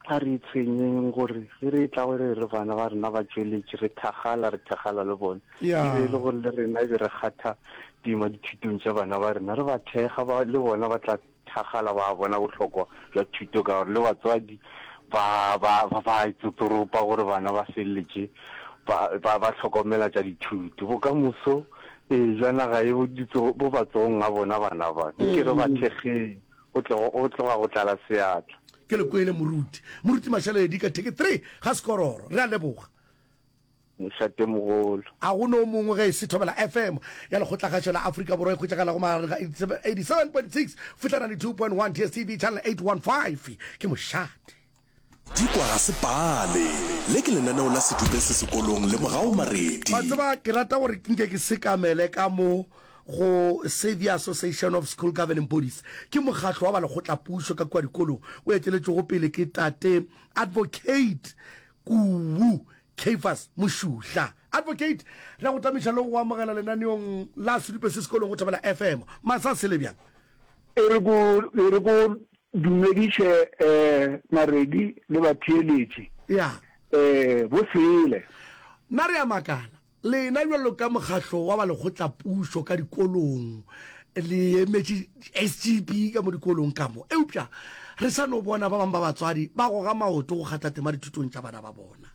A re itshwenyeng gore ge re etla go re re bana ba rena ba tšweletše, re thakgala, re thakgala le bona. E be e le gore le rena e be re kgatha tema dithutong tša bana ba rena, re ba thekga, ba le bona ba tla thakgala ba bona bohlokwa bja thuto ka gore le batswadi ba, ba, ba, ba itsotoropa gore bana ba feleletše ba, ba, ba hlokomela tša dithuto. Bokamoso, ee, bja naga ye bo ditso, bo matsogong a bona bana ba. Nke re ba thekgeng o tlogo o tloga go tlala seatla. Ke le kwele moruti. Moruti Mashaledi ka theke three ga sekororo. Re a leboga. Mošatemogolo. A go no mongwe ge e se Thobela FM ya Lekgotlagaša la Afrika Borwa e hwetšagalago magareng ga 87.6 fihla 92.1 DSTV channel 815? Ke mošate. Dikwa ga se pale. Le ke lenaneo la sedupe se sekolong le morago maredi. Wa tseba, ke rata gore ke nke ke sekamele ka mo go Saviour Association of School Governing Bodies. Ke mokgatlo wa ba lekgotlapušo ka kua dikolong o eteletšwego pele ke Tate Advocate Kubu Caiphas Mošuhla. Advocate, re a go tamiša le go go amogela lenaneong la sedupe se sekolong go Thobela FM. Masa a sele bjang? E re ko, e re ko Dumediše Naredi le batheeletši bo sele. Na re a makala, lena bjalo ka mokgahlo wa ba lekgotlapušo ka dikolong le emetše SGB ka mo dikolong ka mo, eupša re sa no bona ba bang ba batswadi ba goga maoto go kgatha tema dithutong tša bana ba bona.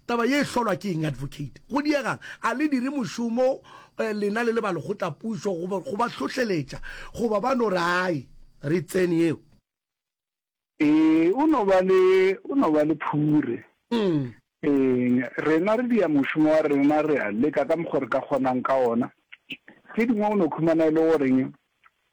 Taba ye e hlolwa ke eng, Advocate? Go diegang? A le dire mošomo eh, lena le le ba lekgotlapušo go ba- go ba hlohleletša goba ba no re ai, re tsene yeo? Ee, o no ba le, o no ba le phure. Mm. Eng, rena re dia mošomo wa rena, re a leka ka mokgo re ka kgonang ka ona. Tše dingwe o no khumana e le goreng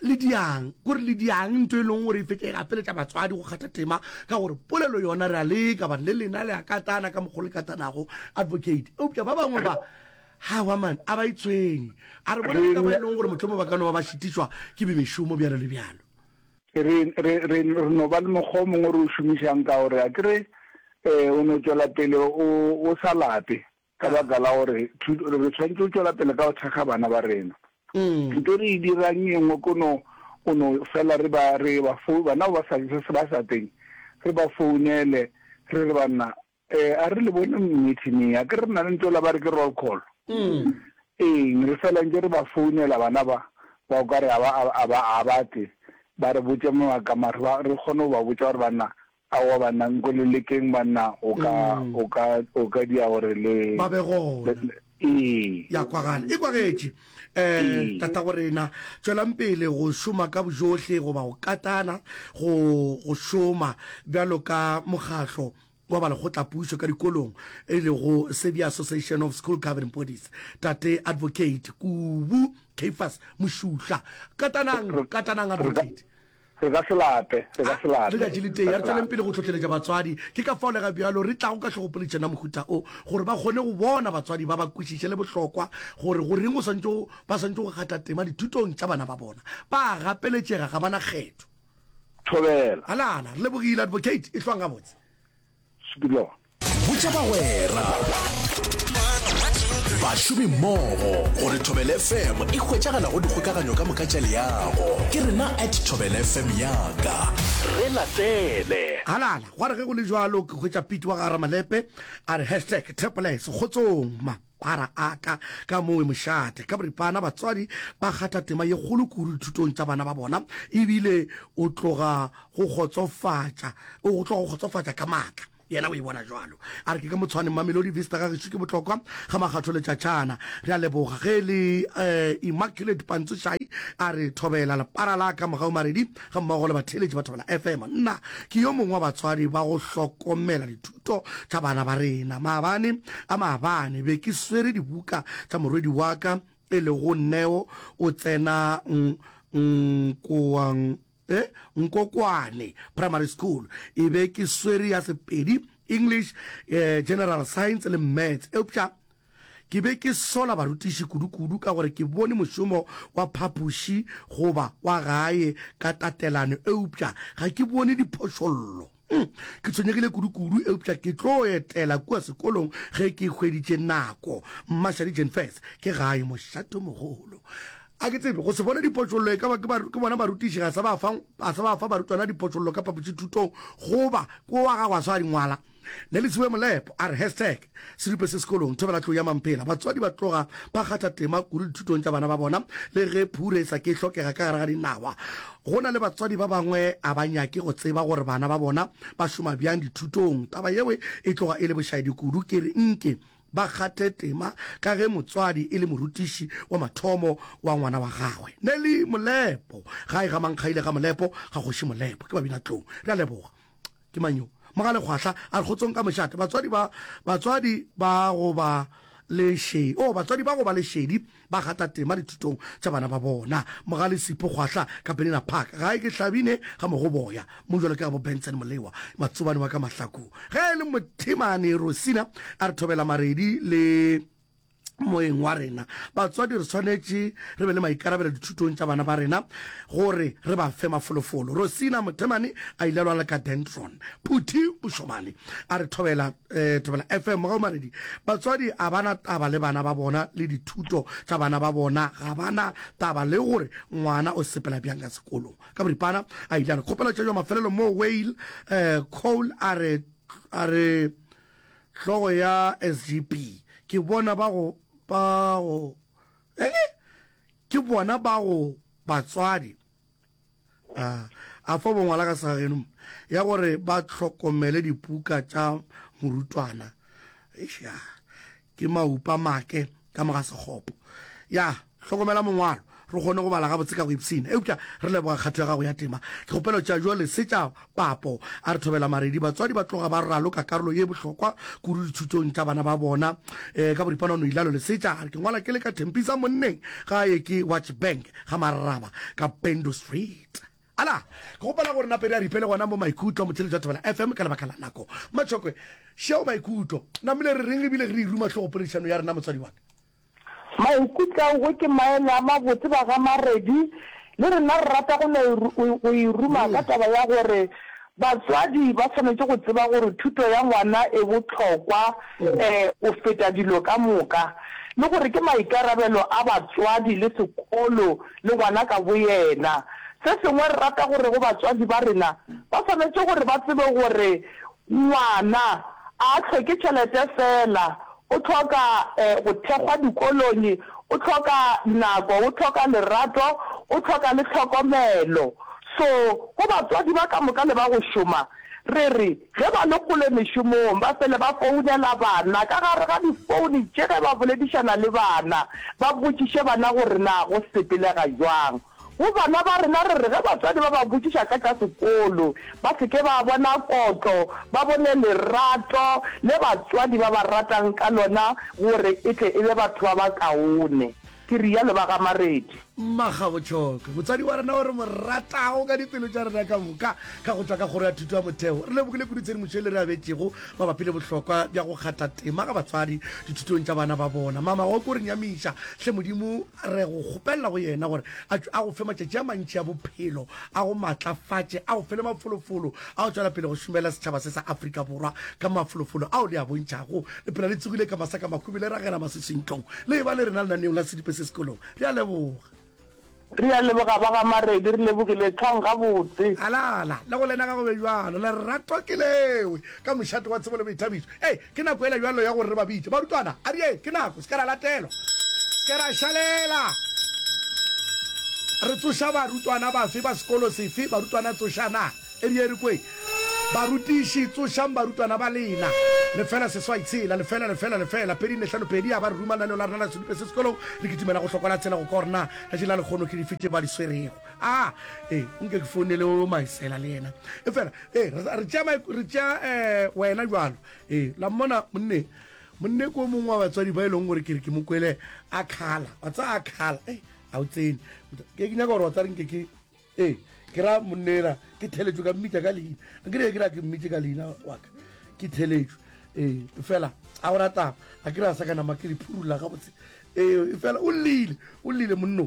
le diang kore le diang nto e leng gore e fetse e gapeletša batswadi go kgatha tema ka gore polelo yona re a leka bane le lena le a katana ka mokgwa le katanago advocate eupša ba bangwe ba ga wa mane a ba e tshwenye a re bone ka ba e leng gore motlhomo ba ka no ba ba šitišwa ke bemešomo bjalo le bjalo re re re no ba le mokgwa o mongwe re o šomišang ka gore a kere um o no tšwela pele o o sa lape Ka baka la gore thuto, re swanetše go tšwela pele ka go thekga bana ba rena. Thuto re e dirang e nngwe ko no, go no fela re ba, re ba fou, bana ba ba sa je se ba sa teng, re ba founele, re re, Banna, eh, a re le bone meeting e, a ke re re na le ntho ela ba re ke roll call. Eng, re fela ntše re ba founela bana ba, ba o ka re a ba, a ba, a ba tle ba re botše mabaka, mare ba, re kgone go ba botša gore, Banna, Aowa banna nko le lekeng banna o ka o ka o ka dia gore le ba be gona ee ya kwagala e kwagetše eh tata go rena tšwelang pele go šoma ka bojohle go ba go katana go go šoma bjalo ka mokgatlo wa ba lekgotla pušo ka dikolong e le go Sebi Association of School Governing Bodies tate advocate Kubu Keifas Mushuhla katanang katanang advocate Re ka se lape, re ka se lape. Letšatši le tee, a re tšweleng pele go hlohleletša batswadi. Ke ka fao le ga bjalo re tlago ka hlogopoledišano ya mohuta o, gore ba kgone go bona, batswadi ba ba kwešiše le bohlokwa gore go reng o swanetše go, ba swanetše go gata tema dithutong tša bana ba bona. Ba a gapeletšega, ga ba na kgetho. Thobela. Alana, re lebogile. Advocate, e hlwang gabotse. Spillover. botša bagwera bašomi mmogo gore thobele fm e hwetšagala go dikgokaganyo ka moka tša leago ke rena at thobele fm yaka re latele halala gwa re ge go le jalo ke hwetša pete wa gara malepe a re hashtag teples kgotsong mapara aka ka mowe mošate ka boripana batswadi ba kgatha tema ye kgolo kuru dithutong tša bana ba bona ebile o tloga go kgotsofatša o tloga go kgotsofatša ka maatla yena o e bona jalo a re ke ka motshwane mamelodi vista ga gešo ke botlokwa ga makgatho letšatšana re a leboga ge le um immaculate pantsošai a re thobela lepara la ka mogau maredi ga mmogo le batheeletši ba thobela fm nna ke yo mongwe wa batswadi ba go hlokomela dithuto tša bana ba rena maabane a maabane be ke swere dibuka tša morwedi wa ka e lego neo o tsena nkoang e Nkokwane Primary School. E be ke swere ya Sepedi, English, eh, General Science le Maths. Eupša ke be ke sola barutiši kudu-kudu ka gore ke bone mošomo wa phapoši goba wa gae ka tatelano eupša ga ke bone diphošollo. Hmm, ke tshwenyegile kudu-kudu eupša ke tlo etela kua sekolong ge ke hweditše nako. Mmašadi Jenfes, ke gae mošatomogolo. A ke tsebe, go se bone dipotšollo e ka ba ke ba- ke bona barutiši ga sa ba fa ga sa ba fa barutwana dipotšollo ka phapošithutong goba ke wa gago a swa di ngwala. Nelisiwe Molepo a re, Hashtag. Siripe se sekolong, thobela tlou ya mampela. Batswadi ba tloga ba kgatha tema kudu dithutong tša bana ba bona le ge phure e sa ke e hlokega ka gare ga dinawa. Go na le batswadi ba bangwe a ba nyake go tseba gore bana ba bona ba šoma bjang dithutong. Taba yeo e tloga e le bošaedi kudu. Ke re nke ba kgathe tema ka ge motswadi e le morutiši wa mathomo wa ngwana wa gagwe. Nelly Molepo, Gae ga Mankgaile ga Molepo, ga Kgoši Molepo. Ke babinatlou. Re a leboga. ke mang yo mogale kgwahla a re kgotsong ka mošate batswadi ba batswadi ba go ba le she o oh, batswadi ba go ba lešedi ba gata tema dithutong tša bana ba bona mogale sipo kgwahla ka benina park gae ke hlabine ga mogoboya mo jalo ke gabo benson molewa matsobane wa ka mahlakong ge e le mothemane rosina a re thobela maredi le moyeng wa rena. Batswadi re swanetše re be le maikarabelo dithutong tša bana ba rena gore re ba fe mafolofolo. Rosina Mothemane a ile a lwala ka Dendron. Phuthi o šomane a re thobela eh, thobela FM mogaumaredi. Batswadi a bana taba le bana ba bona le dithuto tša bana ba bona, ga bana taba le gore ngwana o sepela bjang ka sekolong. Ka boripana a ile a re kgopela tšejo mafelelo moo Wayl eh, Cole a re a re Hlogo ya SGB, ke bona ba go, ba go, eng? Ke bona ba go, batswadi. A, a fo bongwala ka segageno, ya gore ba hlokomele dipuka tša morutwana. Eish, ya. Ke maupa make ka moga sekgopo. Ya, hlokomela mongwalo, re kgone go bala gabotse ka go ipshina. Eupša re leboga kgato ya gago ya tema. Dikgopelo tša jwale se tša papo. A re thobela maredi. Batswadi ba tloga ba raloka karolo ye bohlokwa kudu dithutong tša bana ba bona. E, ka boripana o no ilalo le se tša, a re ke ngwala ke le ka Tembisa monneng ga ye ke Watch Bank ga Marraba ka Pendo Street. Ala, ke kgopela gore Napedi a ripele gona mo Maikutlo, Motšheletši wa Thobela FM, ka lebaka la nako. Matšhokwe, Šeo Maikutlo, namile re reng re bile re iruma hlogo poledišanong ya rena, motswadi wa ka? Maikutlo, Aowe, ke maele a mabotse ba ga Maredi. Le rena re rata go no go iruma ka taba ya gore batswadi ba swanetše go tseba gore thuto ya ngwana e bohlokwa go feta dilo ka moka le gore ke maikarabelo a batswadi le sekolo le gona ka boyena. Se sengwe, re rata gore go batswadi ba rena, ba swanetše gore ba tsebe gore ngwana a a hloke tšhelete feela, o hloka go thekgwa dikolong, o hloka nako, o hloka lerato, o hloka le tlhokomelo. So go batswadi ba ka moka le ba go šoma, re re, Ge ba le kgole mešomong, ba fele ba founela bana ka gare ga difouni tše ge ba boledišana le bana, ba botšiše bana gore na go sepelega bjang. Go bana ba rena re re ge batswadi ba ba botšiša ka tša sekolo, ba se ke ba bona kotlo, ba bone lerato le batswadi ba ba ratang ka lona gore e tle e be batho ba bakaone. Ke realo ba ga Maredi. Mmagabotšhoko, motswadi wa rena o re mo ratago ka dipelo tša rena ka moka, ka go tšwa ka Kgoro ya Thuto ya Motheo, re lebogile kudu tshedimošo e le re abetšego mabapi le bohlokwa bja go kgatha tema ga batswadi dithutong tša bana ba bona. Mama, wa o ke o re nyamiša. Hle Modimo, re go kgopelela go yena gore a tšwe a go fe matšatši a mantši a bophelo, a go matlafatše, a go fe le mafolofolo, A o tšwela pele go šomela setšhaba se sa Afrika Borwa ka mafolofolo ao le a bontšhago? Le phela le tsogile ka masa ka makhubi, le ragela masese ntlong, le eba le rena lenaneong la sedipe se sekolong. Re a leboga. Re a leboga, ba ga Maredi. Re lebogile thwang gabotse. Alala, le go lena ga go be bjalo. Lerato ke lewe ka mošate wa tsebo le boithabišo. Ee, Ke nako yela bjalo ya gore re ba bitše. Barutwana, a bjeng, ke nako. Se ke ra latelwa. Se ke ra šalela. Re tsoša barutwana bafe, ba sekolo sefe? Barutwana, tsošanang. E bjeng re kweng. Barutiši, tsošang barutwana ba lena. Lefela, seswai, tshela. Lefela, lefela, lefela, pedi, nne, hlano, pedi. A ba re ruma lenaneong la rena la sedupe se sekolong. Re kitimela go hlokwa la tshela go korna. Letšatši la lekgono ke dife tše ba di swerego? a e nke ke founele o maisela le yena e fela e re tšea re tšea um wena jalo e la mmona monne monne ko mongwe wa batswadi ba e leng gore ke re ke mo kwele a kgala wa tsa a kgala e ga o tsene ke ke nyaka gore wa tsa renke ke e ke ra monnela ke theletšwe ka mmitša ka leina ke re ke ra ke mmitše ka leina waka ke theletšwe e fela a go rataba a ke re a sa ka nama ke le phurula gabotse e fela o lleile o lleile monno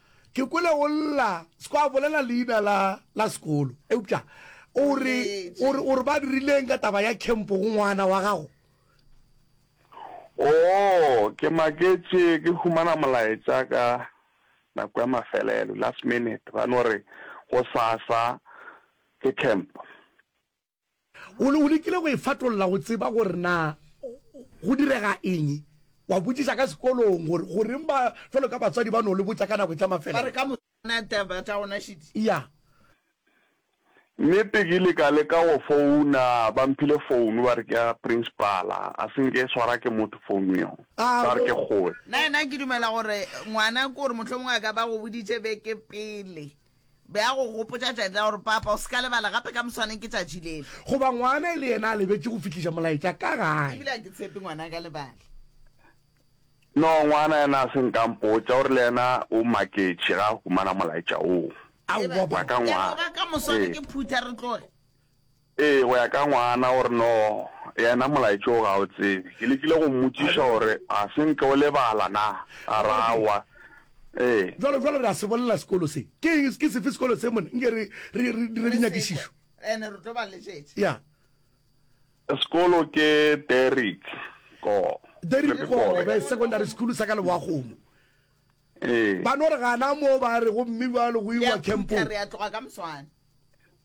Ke kwele o lla seko a bolela leina la la sekolo eupša o re o re o re ba dirileng ka taba ya camp go ngwana wa gago. Oo, ke maketše ke humana molaetša ka nako ya mafelelo, last minute, ba no re gosasa ke camp. O lekile go e fatolla go tseba gore na go direga eng. Wa botšiša ka sekolong gore goreng ba jwalo ka batswadi ba no le botša ka nako tša mafelelo. Ya. Nnete ke ile ka leka go founa, ba mphile founu ba re ke ya principala. A se nke e swara ke motho founu yeo, ba re ke kgoe. Nna ke dumela gore ngwana ke gore mohlomongwe a ka ba go boditše beke pele. Be a go gopotša tšatši la gore, Papa, o se ka lebala gape ka moswaneng ke tšatši lele. Goba ngwana e le yena a lebetše go fihliša molaetša ka gae. Ebile ga ke tshepe ngwana a ka lebala. No, ngwana yena a se nka mpotša, o re le yena o maketše ge a humana molaetša woo wa ka ngwana. Leboga ka moswane ke phutha re tloge. Ee, go ya ka ngwana, o re, No, yena molaetša wo ga o tsebe. Ke lekile go mmotšiša gore ga se nke o lebala na, a re, Aowa. Ee. Bjalo, bjalo re a se bolela sekolo se. Ke eng? Ke sefe sekolo se, monna? Nke re, re, re dire dinyakišišo. Ya. Sekolo ke Derrick Ko. Derrick Ko, Secondary School sa ka Leboakgomo. Ee. Ba no re gana moo, ba re, Gomme bjalo go iwa kempong.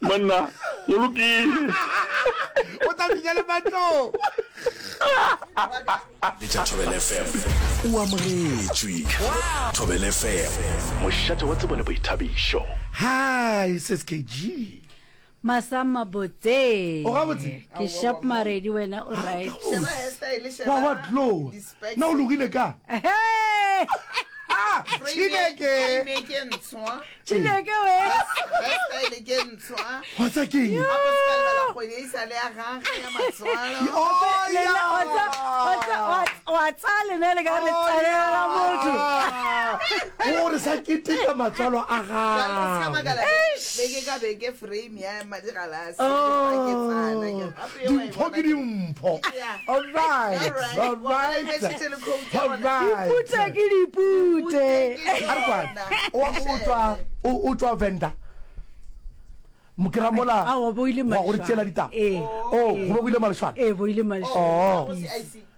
Monna, go lokile. O tla finya le matlong. Le tša Thobela FM. O amogetšwe. Thobela FM. Mošate wa tsebo le boithabišo. Hi, Sis KG. Masa mabotse. O gabotse? Ke sharp maredi wena o right. Wa wa glow. Na o logile ka? Ah, Chineke. Chineke we. Wa tsa ke eng? Wa tsa lena le ka re tsalela motho. O re sa keteka matswalo a gago. dimpho ke dimpho dipute ke dipute wa go tswa o tswa venda mokeramola wa gore tsela ditaba o go be go ile malešwana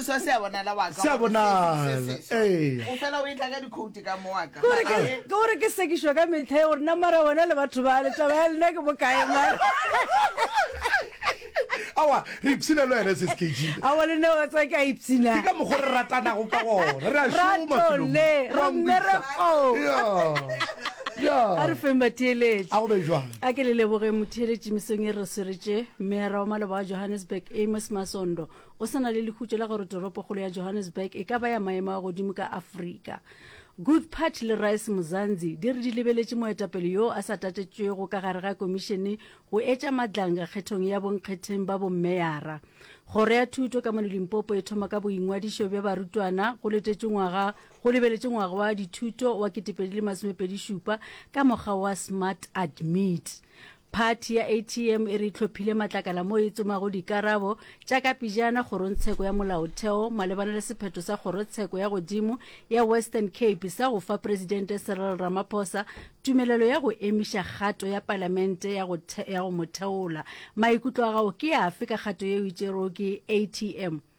Seswa se a bonala wa ka. Se a gore se- bonala, se- se- ee. O fela o e tla ka dikhouti ka mo wa ka. Gore ke- ke gore ke sekišwa ka metlha e gore na mara wena le batho ba le taba ya lena ke bokae mara awa re ipshina le wena se se kg a wa lena wa tsa ke a ipshina ke ka mokgwa re ratanago ka gona re a šoma ratole ra mmereko a re feng batheeletši a go be jwang a ke le leboge motheeletši mesong e re sweretse mmera wa maloba wa johannesburg amos masondo Go sa na le lehutšo la gore toropokgolo ya Johannesburg e ka ba ya maemo a godimo ka Afrika, Guth Patch le Rice Muzanzi di re di lebeletše moetapele yo a sa tatetšwego ka gare ga komišene go etša madlanga kgethong ya bonkgetheng ba bommeyara. Kgoro ya thuto ka mono Limpopo e thoma ka boingwadišo bja barutwana go letetšwe ngwaga go lebeletše ngwaga wa dithuto wa 2027 ka mokgwa wa Smart Admit. Phathi ya ATM e re e tlhophile matlakala mo e tsomago dikarabo tša kapejana Kgorongtsheko ya Molaotheo malebana le sephetho sa Kgorotsheko ya Godimo ya Western Cape sa go fa Presidente Cyril Ramaphosa tumelelo ya go emiša kgato ya Palamente ya go, ya go mo theola. Maikutlo a gago ke afe ka kgato yeo e tšerwego ke ATM?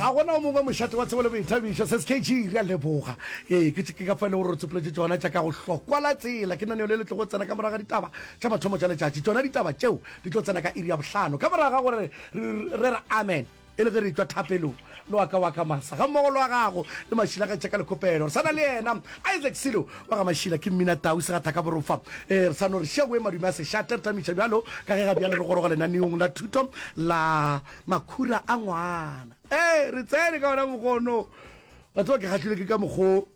ga gona o mongwe mošate wa tsebo le boithabišo se skg re a leboga ee ke ke ka fa e le gore re tsopoletse tsona tša ka go hlokwa la tsela ke naneo le le tlogo tsena ka moraga ditaba tša mathomo tša letšatši tsona ditaba tšeo di tlo tsena ka iri ya bohlano ka moraga gore re re amen E le ge re tšwa thapelong, le wa ka wa ka Masa gammogo le wa gago le Mašila ga tšheka lekgopelo. Re sa na le yena Isaac Silo wa ga Mašila ke Mmina Tau Segathaka Borofa. E, re sa no re šegoe madume a sešate. Re tamiša bjalo ka ge ga bjale re goroga lenaneong la thuto la Makhura a Ngwana. E, re tsene ka wona mokgwa ono. Wa tseba ke kgahlilwe ke ka mokgwa o.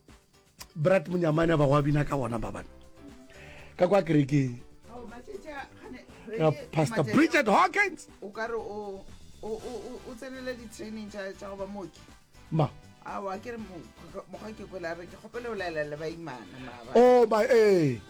brat monyamane ba go bina ka gona babane ka kwa kerekeng pastor bridget hawkins o kare o o tsenele di-training tša go ba mooki ma awa ke re mokgwa ke kwela re ke kgopele o laela le baimana o ba ee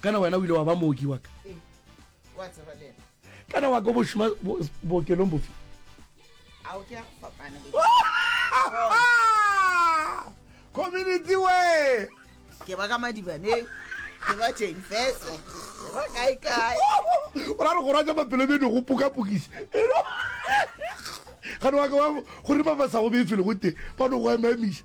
kana wena o ile wa ba mooki waka kana waka o bošoma bookelong bofe community we ke ba ka madibaneng ke ba teng feso ba kae kae o ra re go ratsa mapelo beno go pukapukisa gane wa ka wa gore ba ba sa go befele go teng ba no go emamisa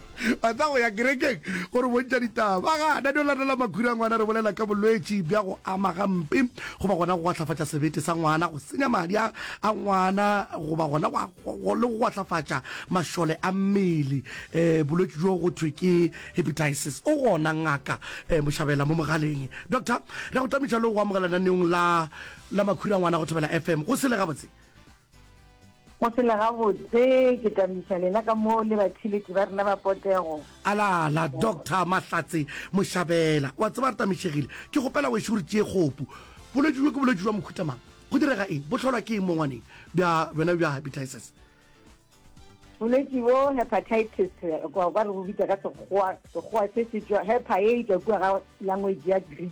Ba tla go ya kerekeng go re bontša ditaba. Ba gana di latela makhura a ngwana, re bolela ka bolwetši bja go ama gampe goba gona go gwahlafatša sebete sa ngwana, go senya madi a a ngwana goba gona go le go gwahlafatša mašole a mmele. Bolwetši bjo go thwe ke hepatitis. O gona Ngaka Moshabela mo mogaleng. Doctor, re a go tlamiša le go go amogela lenaneong la la makhura a ngwana go Thobela FM. Go sele gabotse. Go phela gabotse ke tla miša lena ka mo le batheletši ba rena ba potego. Alala, Doctor Mahlatse Moshabela. Wa tseba re tamišegile. Ke kgopela wešo o re tšee kgopu. Bolwetši bjo ke bolwetši bja mohuta mang? Go direga eng? Bo hlolwa ke eng mo ngwaneng? Bja bjona bja hepatitis? Bolwetši bo hepatitis, kwa re bo bitsa ka Sekgowa, Sekgowa se se tšwa, hepa ye e tšwa kua ga language ya Greek.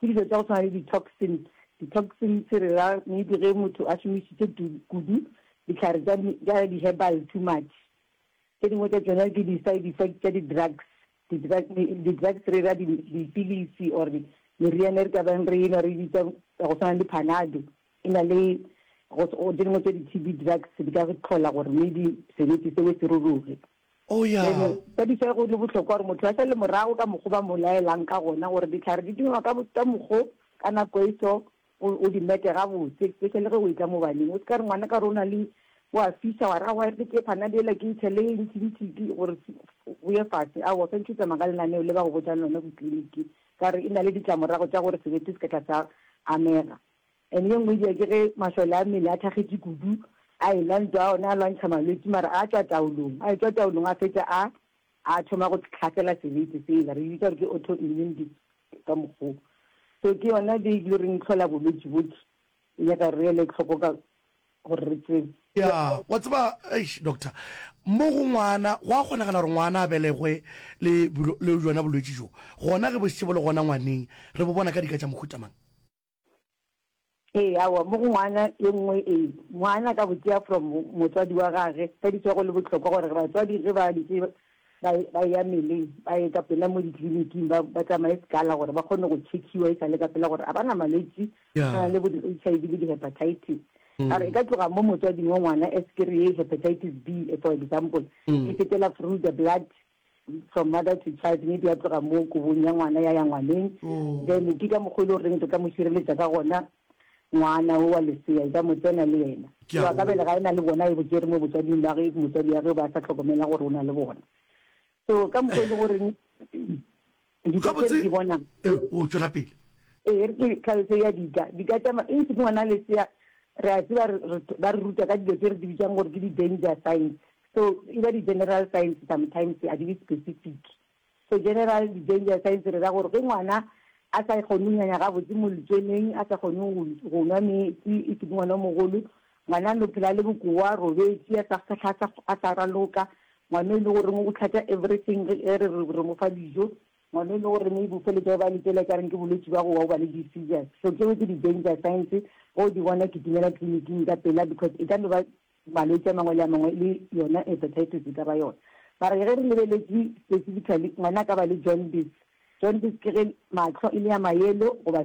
Ke dilo tša go tshwana le di-toxin. Di-toxins re ra maybe ge motho a šomišitše kudu dihlare tša di-herbal too much. Tše dingwe tša tšona ke di-side effect tša di-drugs. Di-drugs re ra dipilisi or meriana e re ka beng re e nwa re e bitša ya go tshwana le Panado. E na le tše dingwe tša di-T_B drugs di ka go tlhola gore maybe sebete seo se ruruge. Oh, ya. Bjale, ka disa go le bohlokwa gore motho a sa le morago ka mokgo ba mo laelang ka gona, gore dihlare di dingwa ka bo, ka mokgo, ka nako e so, o, o di mete gabotse, especially ge o e tla mo baneng. O se ka re ngwana ka gore o na le, o a fisa, wa re aowa e re ke panado yela ke e tshele ntshintshiti, gore o ye fase. Aowa, o swanetše o tsamaya ka lenaneo le ba go botšang lona ko tliliniking, ka gore e na le ditlamorago tša gore sebete se ka tla sa amega. And ye nngwe edia ke ge masole a mmele a thakgetše kudu, a e-la ntwa, ona a lwantšha malwetši, mara a tšwa taolong, a etšwa taolong a fetša a a thoma go tlhasela sebete sela, re e bitsa gore ke autoimmune disease ka mokgwa wo. So ke yona be e tlilo re nhlola bolwetši bohle, e nyaka gore re ele tlhoko ka gore re tsebe. Ya, wa tseba, eish doctor, mo go ngwana, go a kgonagala gore ngwana a belegwe le le bjona bolwetši bjo, gona ge bo šetše bo le gona ngwaneng, re bo bona ka dika tša mohuta mang? Ee, awa, mo go ngwana e nngwe e. Ngwana ka go tšea from motswadi wa gage, ka di tswa go le bohlokwa gore batswadi ge ba dutše ba, ba ya meleng, ba ye ka pela mo ditliliniking, ba, ba tsamaye sekala gore ba kgone go tšhekhiwa e sa le ka pela gore a ba na malwetši a tshwana le bo di-HIV le di-hepatitis. A re e ka tloga mo motswading wa ngwana, aspiri ye, hepatitis B, for example, e fetela through the blood, from mother to child maybe a tloga mo kobong ya ngwana ya ya ngwaneng then ke ka mokgwa e le goreng re ka mo šireletša ka gona ngwana o wa lesea e ka mo tsena le yena Ke a wa ka go- bele ga e na le bona e bo tsere mo botswading ba ge motswadi ya ge ba sa tlhokomela gore o na le bona so ka mokgwa e le goreng Gabotse, ee, oo, tšwela pele. Ee, e re ke tlhaloso ya dika. Dika tša ma, eng se ke ngwana lesea, re a tseba re, re, ba re ruta ka dilo tše re di bitšang gore ke di-danger signs. So, e ba di-general signs sometimes, a di be specific. So, general di-danger signs re ra gore ge ngwana a sa kgone go nyanya gabotse mo letsweleng, a sa kgone go, go nwa meetse, e se ke ngwana o mogolo, Ngwanano o phela le bokowa, a robetše, a sa kgahla, a sa, a sa raloka. Ngwano e le goreng o tlhatša everything ge e re, re, re mo fa dijo. Ngwano e le gore maybe o feletša o baletela ekareng ke bolwetši bja go wa, o ba le di-seizures. So tšeo ke di-danger signs, ge o di bona kitimela tliliniking ka pela because e ka no ba malwetši a mangwe le a mangwe le yona hepatitis e ka ba yona. Mara ge re lebeletše specifically, ngwana a ka ba le jaundice. Jaundice ke ge mahlo e le a ma-yellow goba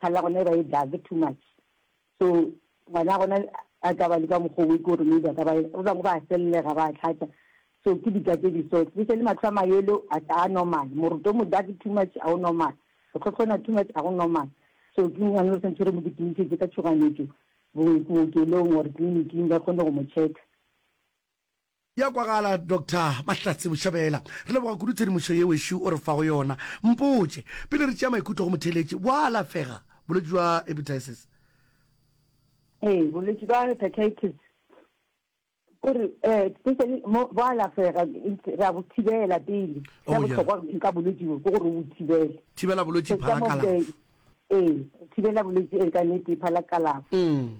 Kgale ya gona e ba e dark too much. So ngwana ya gona a ka ba le ka mokgwa o e ke gore maybe a ka ba ba bangwe ba sellega ba tlhatša. So ke dika tse di so especially matlho a ma yellow a se a normal. Moroto o mo dark too much a o normal. Go tlhotlhona too much a go normal. So ke ngwana o santse re mo dikinišetše ka tšhoganetšo bookelong or tliliniking ba kgone go mo check. Ya kwagala Doctor Mahlatse Boshabela. Re leboga kudu tshedimošo ye wešo o re fago yona. Mpotše, pele re tšea maikutlo go motheeletši, bo a alafega bolwetši bja hepatitis? Ee, bolwetši bja hepatitis ke re especially mo bo alafega, re a bo thibela pele. Se bohlokwa ka bolwetši bo ke gore o bo thibele. Thibela bolwetši phala kalafo. Ee, go thibela bolwetse e ka nete pha la kalafo.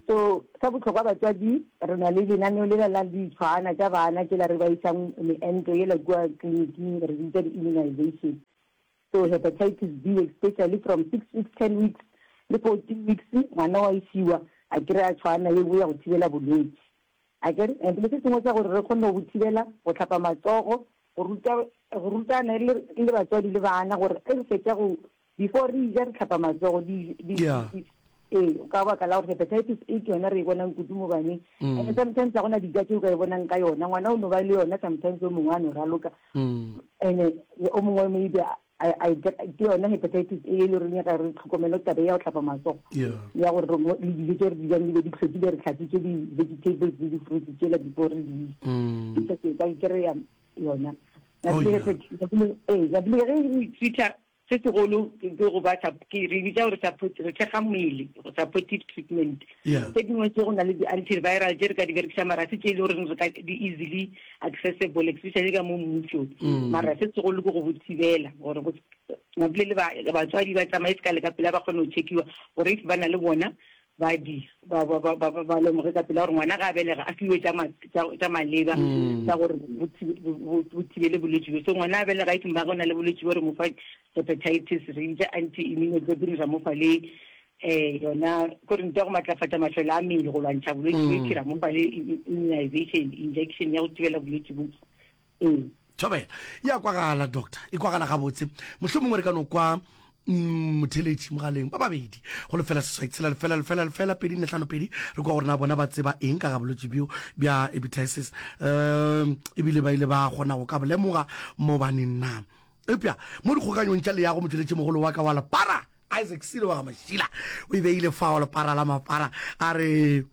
So, sa bohlokwa batswadi, re na le lenaneo lela la ditshwana tša bana tšela re ba isang meento yela kua kliniking, re di bitša di-immunization. So, hepatitis B especially from six weeks, ten weeks le fourteen weeks, ngwana wa e fiwa a kry-a tshwana ye nngwe ya go thibela bolwetse. Akere? And le se sengwe sa gore re kgone go bo thibela, go hlapa matsogo, go ruta, go rutana le, le batswadi le bana gore ge re fetša go before re ja re tlhapa matsogo ee ka baka la gore hepatitis a ke yona re e bonang kudu mo baneng mm. and sometimes ga gona dija tse o ka e bonang ka yona ngwana o no ba le yona sometimes o mongwe a no raloka mm. and o mongwe maybe ke yona hepatitis e e le reng ga re tlhokomelo tabe ya go tlhapa matsogo ya gore le dijo tse re dijang dibe di tlhokile re tlhatsitse di-vegetables le di-fruits tsela before re di mm. ka kry-a yona ee jablege e sweeter Se segolo ke go ba sa, ke re bitsa gore support, go thekga mmele, supportive treatment. Tše dingwe tše go na le di-antiviral tše re ka di berekisa mara se tše e le goreng re ka di easily accessible especially ka mo mmusong. Mara se segolo ke go bo thibela gore go se, ba bolele batswadi ba tsamaye se ka le ka pela ba kgone go check-iwa gore if ba na le bona Badi ba, ba, ba, ba, ba, ba lemoge ka pela gore ngwana ga a belega a fiwe tša ma- tša- tša maleba tša gore bo thi- bo- bo- bo thibele bolwetši bjo so ngwana a belega e ba go na le bolwetši bo re mo fa hepatitis re ntša anti immunoglobulin ra mo fa le um yona kore nto ya go matlafatša matlhole a mmele go lwantšha bolwetši bo itšhira mo fa le i- i- immunization injection ya go thibela bolwetši bo ee thobela e a kwagala doctor e kwagala gabotse mohlho mongwe re ka no kwa mm, motheletši mogaleng ba babedi go lefela seswai tshela lefela lefela lefela pedi nne tlhano pedi re kwa gore na bona ba tseba eng ka ga bolwetši bjo bja ebitisis um ebile ba ile ba kgona go ka bolemoga mobaneng na epja mo dikgokanyong tša leyago motheletši mogolo wa ka wa lepara isaac sile wa ga mašila o e beile fa wa lepara la mapara a re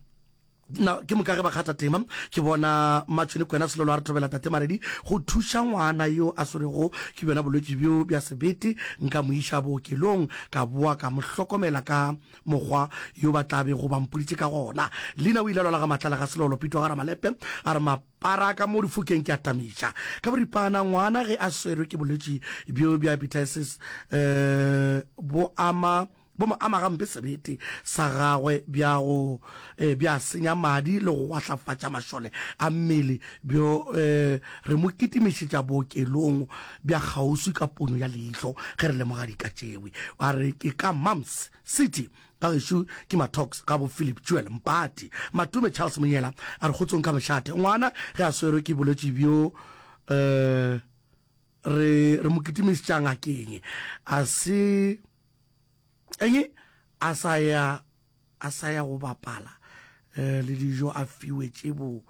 Na ke moka ge ba kgatha tema, ke bona Matšhoni Kwena Selolo a re thobela Tate Maredi go thuša ngwana yo a swerego ke bjona bolwetši bjo bja sebete. Nka mo iša bookelong ka boa ka mo hlokomela ka mokgwa yo ba tla bego ba mpoditše ka gona. Lina o ile a lwala ga matlala ga Selolo. Pitwa ga Ramalepe a re mapara a ka mo difokeng ke a tamiša ka boripana. Ngwana ge a swerwe ke bolwetši bjo bja epitiasis bo ama. Bo mo ama gampe sebete sa gagwe bja go eh, bja senya madi le go gwahlatfatša mašole a mmele bjo eh, re mo kitimišetša bookelong bja kgauswi ka pono ya leihlo ge re lemoga dika tšewe. A re ke ka Mumps City ka gešo ke Matox ga bo Philip Jewel Mpati. Matume Charles Monyela a re kgotsong ka mešate ngwana ge a swerwe ke bolwetši bjo eh, re, re mo kitimišetša ngakeng a se Eng? A sa ya, a sa ya go bapala eh, le dijo a fiwe tše bo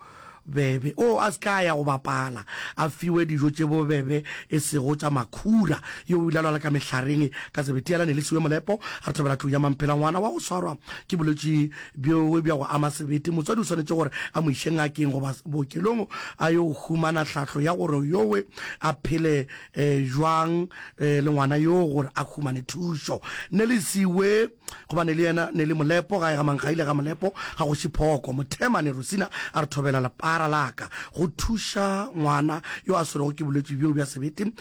bebe o a se ka ya go bapala a fiwe dijo tše bobebe e sego tša makhura yo o ilalwala ka mehlareng ka sebetiela ne le siwe molepo a re thabela tlong ya mamphela ngwana wa go swarwa ke bolwetši bjoe bja go ama sebete motswadi o swanetše gore a mo iše ngakeng goba bookelong a yo humana tlhahlo ya gore yowe a phele jwang le ngwana yo gore a humane thušo. Nelisi we, gobane le yena ne le molepo, gae ga Mankgaile ga molepo, ga Kgoši Phoko. Mothemane Rosina a re thobela lepara la ka go thuša ngwana yo a swerego ke bolwetši bjo bja sebete.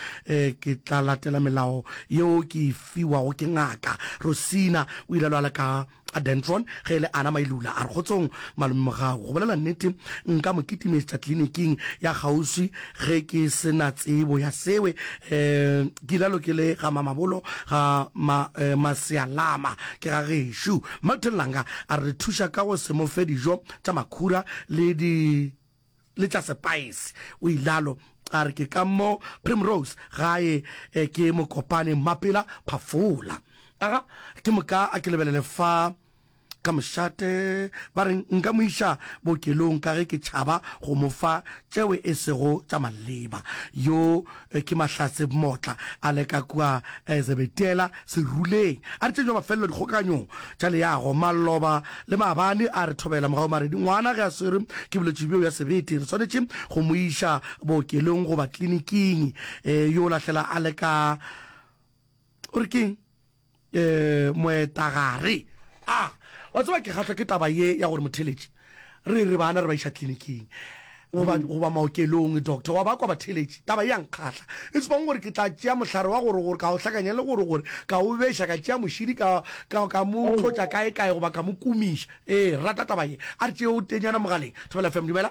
Ke tla latela melao yeo ke e fiwago ke ngaka. Rosina o ile a lwala ka. A Dentron, ge e le Ana Mailula, a re, Kgotsong, malomemogau. Go bolela nnete, nka mo kitimetša kliniking ya kgauswi ge ke se na tsebo ya sewe. Ke ilalo ke le ga Mamabolo, ga ma, Masealama, ke ga gešo. Milton Langa a re re thuša ka go se mo fe dijo tša makhura le di. le tša sepaese. O ilalo a re ke ka mo Primrose gae e ke Mokopane Mmapela Phafola. Aga ke moka a ke lebelele fa ka mošate ba re nka mo iša bookelong ka ge ke tšhaba go mo fa tšeo e sego tša maleba. Yo Ke mahlatse bmotla a leka kua Zebetela seruleng, a re tšejwa mafelelo dikgokaganyong tša leago, maloba le maabane a re thobela morago maredi. Ngwana ge a swerwe ke bolwetši bjo bja sebete, re swanetše go mo iša bookelong goba kliniking. Yo lahlela a leka o re keng? Moetagare a, Wa tseba ke kgahlwa ke taba ye ya gore motheletši, re re bana re ba iša tliliniking goba, goba maokelong, doctor wa ba kwa batheletši. Taba ye ya nkgahla. E supang gore ke tla tšea mohlare wa gore, gore ka o hlakanya le gore, gore ka o beša, ka tšea mošidi ka, ka, ka mo tlotša kae kae goba ka mo kumiša. Ee, re rata taba ye. A re tšee o tenyana mogaleng. Thobela FM, dumela.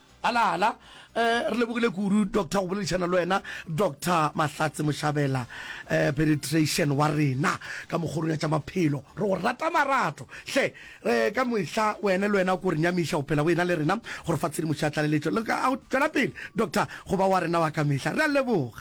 Alala. Re lebogile kudu doctor go boledišana le wena Doctor Mahlatse Moshabela eh, penetration wa rena ka mokgorong ya tša maphelo re go rata marato hle eh, ka mehla wena le wena ko re nyamiša go phela go ena le rena gore fa tshedimošo ya tlaleletšo le ka a go tšwela pele doctor go ba wa rena wa ka mehla re a leboga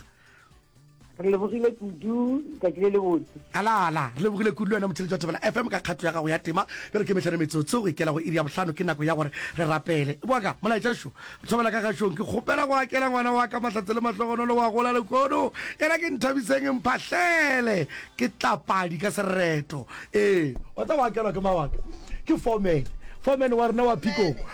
re lebogile kudu tsatsi le le botse alala re lebogile kudu le wena motheletši wa thobela fm ka kgato ya gago ya tema e re ke metlhano metsotso go ikela go iri ya bohlano ke nako ya gore re rapele e boaka molaetša šo thobela ka gašong ke kgopela go akela ngwana wa ka mahlatse le mahlogonolo wa gola lekono ena ke nthabiseng mphahlele ke tlapadi ka sereto ee wa tsa go akelwa ke mawaka ke fomen fomen wa rena wa phikong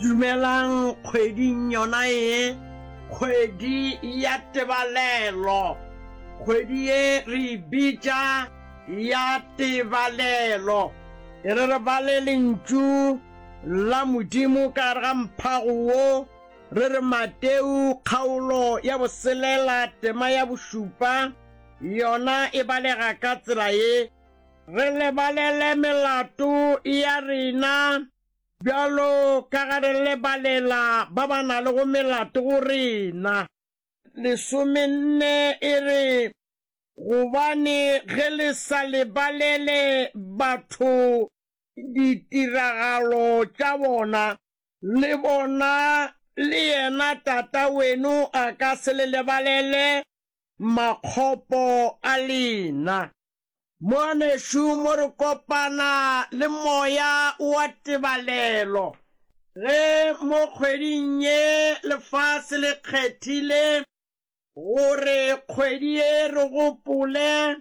Dumelang kgweding yona ye, kgwedi ya tebalelo. Kgwedi ye re e bitša ya tebalelo. E re re bale Lentšu la Modimo ka gare ga mphago wo, re re Mateu kgaolo ya boselela tema ya bošupa, yona e balega ka tsela ye. Re lebalele melato ya rena. Bjalo ka ge re lebalela ba ba na le go melato go rena. Lesomenne e re, Gobane ge le sa lebalele batho ditiragalo tša bona, le bona le yena Tata wenu a ka se le lebalele makgopo a lena. Ngwanešu, mo re kopana le moya wa tebalelo, ge mo kgweding ye lefase le kgethile gore kgwedi ye re gopole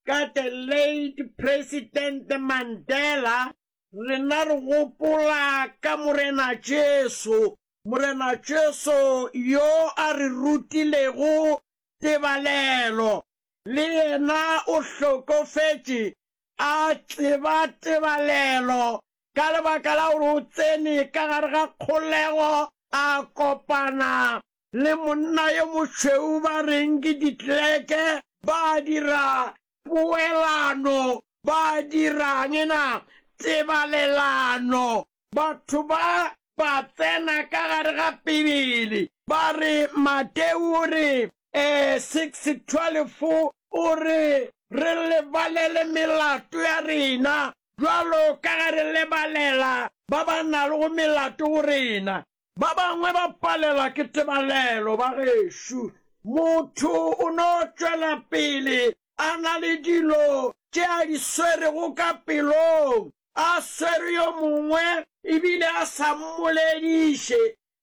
ka the late President Mandela, rena re gopola ka Morena Jesu, Morena Jesu yo a re rutilego tebalelo. le yena o hlokofetše, a tseba tebalelo ka lebaka la gore o tsene ka gare ga kgolego, a kopana le monna yo mošweu ba reng ke ditleke, ba dira poelano, ba dirang na? Tebalelano. Batho ba ba tsena ka gare ga Bibele ba re, Mateu o re, 6:12 o re, Re lebalele melato ya rena bjalo ka ge re lebalela ba ba nago melato go rena. Ba bangwe ba palelwa ke tebalelo, bagešu. Motho o no tšwela pele a na le dilo tše a di swerego ka pelong, a swere yo mongwe e bile a sa mmolediše.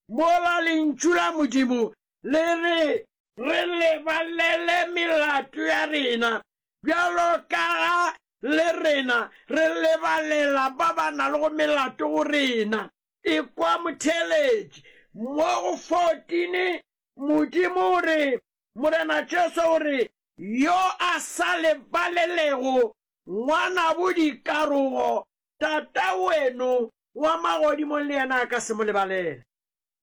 Mola Lentšu la Modimo le re re lebalele melato ya rena bjalo ka ga le rena re lebalela ba ba nago melato go rena. Ekwa motheeletši. Mo go 14, Modimo o re, Morena Jesu o re, Yo a sa lebalelego ngwanabo dikarogo, Tata weno wa magodimong le yena a ka se mo lebalele.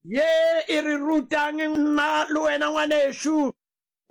Ye e re ruta'ng nna le wena, ngwanešu?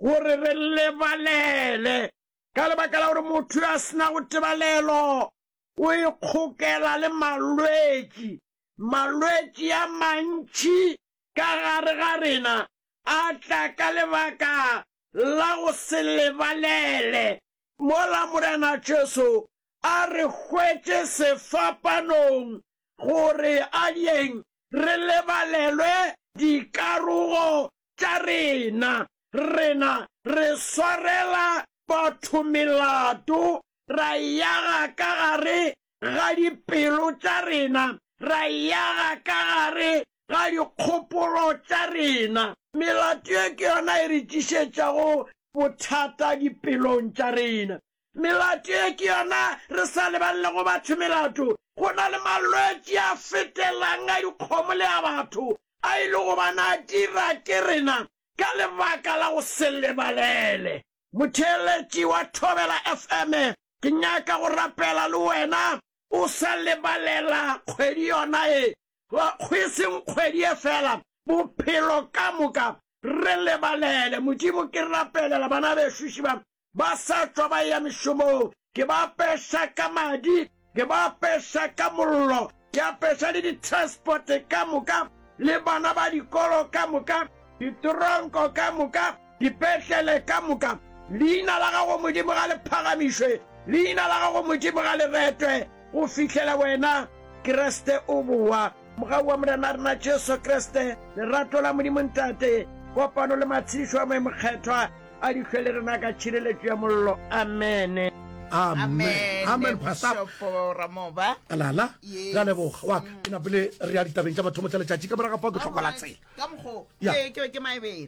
Gore re lebalele. Ka lebaka la gore motho yo a se nago tebalelo o e kgokela le malwetši. Malwetši a mantši ka gare ga rena a tla ka lebaka la go se lebalele. Mola Morena Jesu a re hwetše sefapanong gore a dieng re lebalelwe dikarogo tša rena. Rena re swarela batho melato, ra e yaga ka gare ga dipelo tša rena, ra e yaga ka gare ga dikgopolo tša rena. Melato ye ke yona e re tlišetšago bothata dipelong tša rena. Melato ye ke yona re sa lebalelego batho melato. Go na le malwetši a fetelang a dikgomo le a batho a e le go ba na dira ke rena ka lebaka la go se lebalele. Motheeletši wa Thobela FM, ke nyaka go rapela le wena o sa lebalela kgwedi yona ye. Go e seng kgwedi ye fela, bophelo ka moka. Re lebalele. Modimo, ke rapelela bana bešuši ba ba sa tšwa ba eya mešomong, ke ba apeša ka madi, ke ba apeša ka mollo, ke apeša le ditransporte ka moka, le bana ba dikolo ka moka, ditoronko ka moka, dipetlele ka moka. Leina la gago Modimo ga le phagamišwe, leina la gago Modimo ga le retwe, go fihlela wena Kriste o bowa. Mogau wa Morena rena Jesu Kriste, lerato la Modimo Ntate, kopano le matshedišo a Moya Mokgethwa a di hlwe le rena ka tšhireletšo ya mollo. Amene. Amen. Amen, Pastor. Bishop Ramoba. Alala, Yes. ra leboga wa ka ke napele re ya ditabeng tša mathomo tša letšatši ka moraga pao ke tlhokola tsela Ka mokgo, Ya. ee, ke be ke maebela.